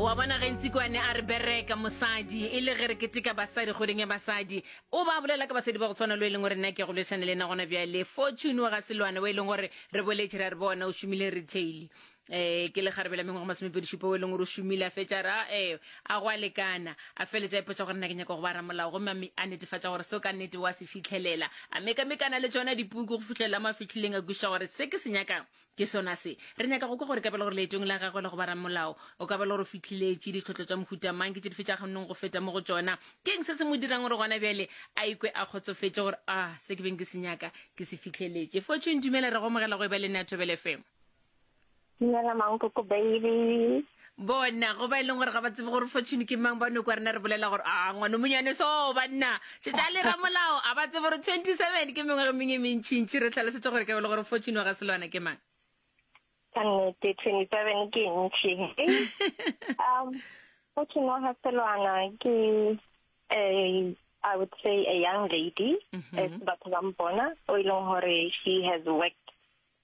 wa bona ge ntse kwane a re bereka mosadi e le ge re keteka basadi kgweding ya basadi o ba bolela ka basadi ba go tshwana lo e leng gore nna ke go lešane le ena gona bjale fortune wa ga selwane o e leng gore re boletše ra re bona o šomile retail um ke le kgarabela mengwe go masomepedišupa o e leng gore o šomile a fetša ra e a go a lekana a feletša ipotsa gore nna ke nyaka go ba ramolao gomme mme a netefatša gore seo ka nnete wa se fitlhelela a mekamekana le tsona dipuku go fitlhelela mo a fitlhileng a kweša gore se ke se nyakang Ke sona se. Re nyaka go kwa gore ka ba le gore leetong la gagwe la go ba ramolao, o ka ba le gore o fitlhiletše ditlhotlo tša mohuta mang, ke tše dife tša kgonneng go feta mo go tšona. Ke'ng se se mo dirang gore gona bjale a ikwe a kgotsofetše gore, A, se ke beng ke se nyaka, ke se fitlheletše? Fortune, Dumela, re go amogela go eba le nna ya Thobela FM. Dumela, Mankoko Bailey. bona go ba e leng gore ga ba tsebe gore fortune ke mang ba no kwa rena re bolela gore a ngwana monyane so banna tšetša le ramolao a ba tsebe gore twenty seven ke mengwe ge mengwe e mentšhintšhi re tlhalosetse gore ke bele gore fortune wa ga selwana ke mang ka nnete twenty seven ke ntšhi um fortune wa ga selwana ke a i would say a young lady mm -hmm. batho ba mpona o e leng gore she has worked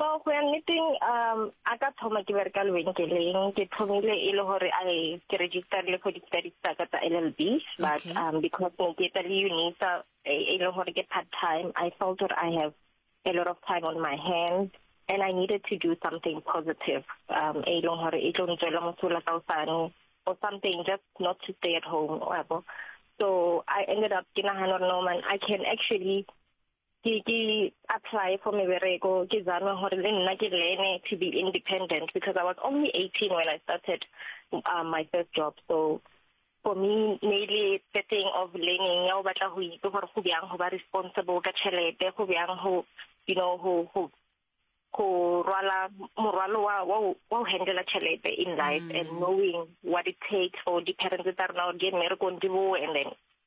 So go ya nneteng um a ka thoma ke bereka lebenkeleng ke thomile e le gore I ke registerile for di-studies tsa ka tsa LLB but Okay. um because ne ke etsa le UNISA e e le gore ke part time I felt gore I have a lot of time on my hands and I needed to do something positive um e leng gore e tlo ntswela mosola ka osane or something just not to stay at home wa bo so I ended up ke nagana gore no man I can actually ke ke apply for mebereko ke zame gore le nna ke learne to be independent because I was only 18 when I started uh, my first job so for me ne le the thing of learning ya o batla go itse gore go bjang go ba responsible ka tšhelete go bjang go you know go go go rwala morwalo wa wa wa go handela tšhelete in life mm. and knowing what it takes for di-parents tsa rena gore di eme re kondi boe and then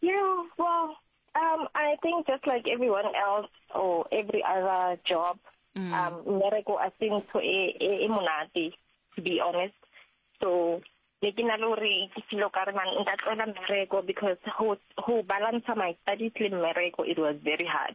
Yeah, well, um, I think just like everyone else or every other job, mm. um, miracle I think to a a monate, to be honest. So ne ke na le gore ke filo ka re man nka tloela mmereko because go balance my studies le mmereko it was very hard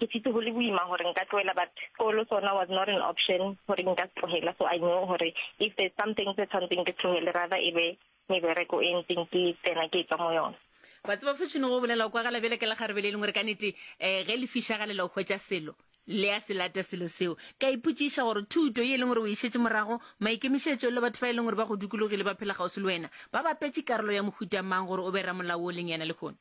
Ke fitse go le boima gore nka tlohela but sekolo sona was not an option gore nka se tlohela so I knew gore if there's something se tshwantseng ke se tlohele rather e be mebereko e ntseng ke tsena ke tswa mo yona. Wa tseba Fortune go bolela o kwagala bjale ka lekgarebe le lengwe re ka nete um ge le fišagalela go hwetša selo le ya se lata selo seo. Ke a ipotšiša gore thuto ye e leng gore o e šetše morago, maikemišetšo le batho ba e leng gore ba go dukulogile ba phela kgauswi le wena ba bapetše karolo ya mohuta mang gore o be ramolao wo o leng yena lehono?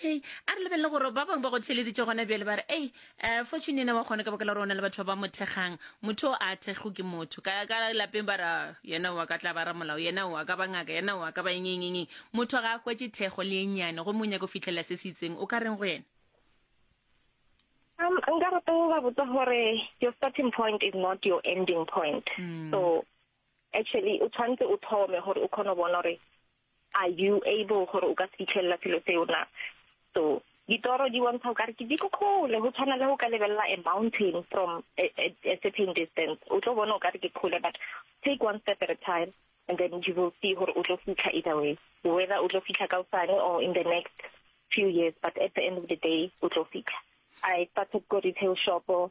okay a re lebelele gore ba bangwe ba go theleditse gona bjale ba re ei um fortune ena wa kgone ka baka la gore o na le batho ba ba mo thekgang motho o a thekgo ke motho ka ka lapeng ba ra yena wa ka tla ba ramolao yena wa ka ba ngaka yena wa ka ba engengengeng motho ga a hwetse thekgo le ennyane gomme o nyaka go fitlhelela se se itseng o ka reng go yena um nka rata go ba botsa gore your starting point is not your ending point mm. so actually o tshwanetse o thome gore o kgone go bona gore Are you able gore o ka se fitlhelela selo seo na? So ditoro di bontsha o ka re ke di ko kgole, go tshwana le go ka lebelela a mountain from a, a, a certain distance. O tlo bona o ka re ke kgole but take one step at a time and then you will see gore o tlo fitlha either way. Whether o tlo fitlha kaosane or in the next few years but at the end of the day o tlo fitlha. I started ko retail shop-o.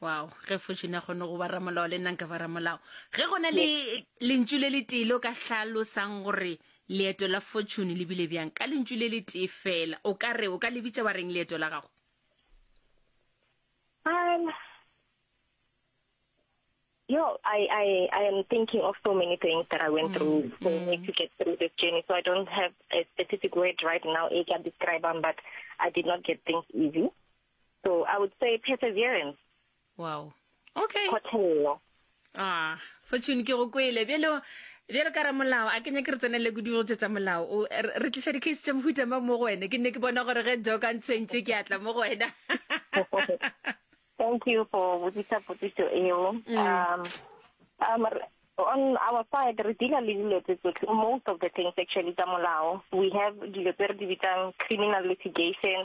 wow ge fortune a kgone go ba ramolao le nna nka ba ramolao ge go na le lentšu le letee le o ka hlalosang gore leeto la fortune le bile bjang ka lentšu le letee fela o ka re o ka lebitša ba reng leeto la gago um, Yo, I, I, I am thinking of so many things that I went mm. through for mm. me to get through this journey. So I don't have a specific word right now I can describe them, but I did not get things easy. So I would say perseverance. Wow. Okay. Kgotlhelelo. Ah, Fortune ke go kwele. Bjale bjale ka ramolao a kenya ke re tsenele go dilo tsa molao o re tliša di case tsa mohuta ma mo go wena ke ne ke bona gore ge jo ka ntshwentše ke atla mo go wena thank you for botsisa potsiso eo mm. um um on our side re deala le dilo tse tsotlhe most of the things actually tsa molao we have dilo tse re di bitsang criminal litigation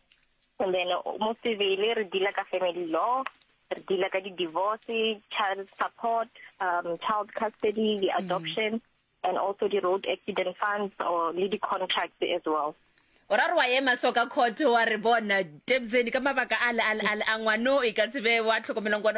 And then mo Sebele re dealer ka family law, re dealer ka di-divorce, child support, um, child custody, di-adoption, mm. and also di-road accident funds or le di-contracts as well. o ra re wa ema so ka court wa re bona tebseni ka mabaka a le a ngwano e ka tsebe wa tlhokomelong kwana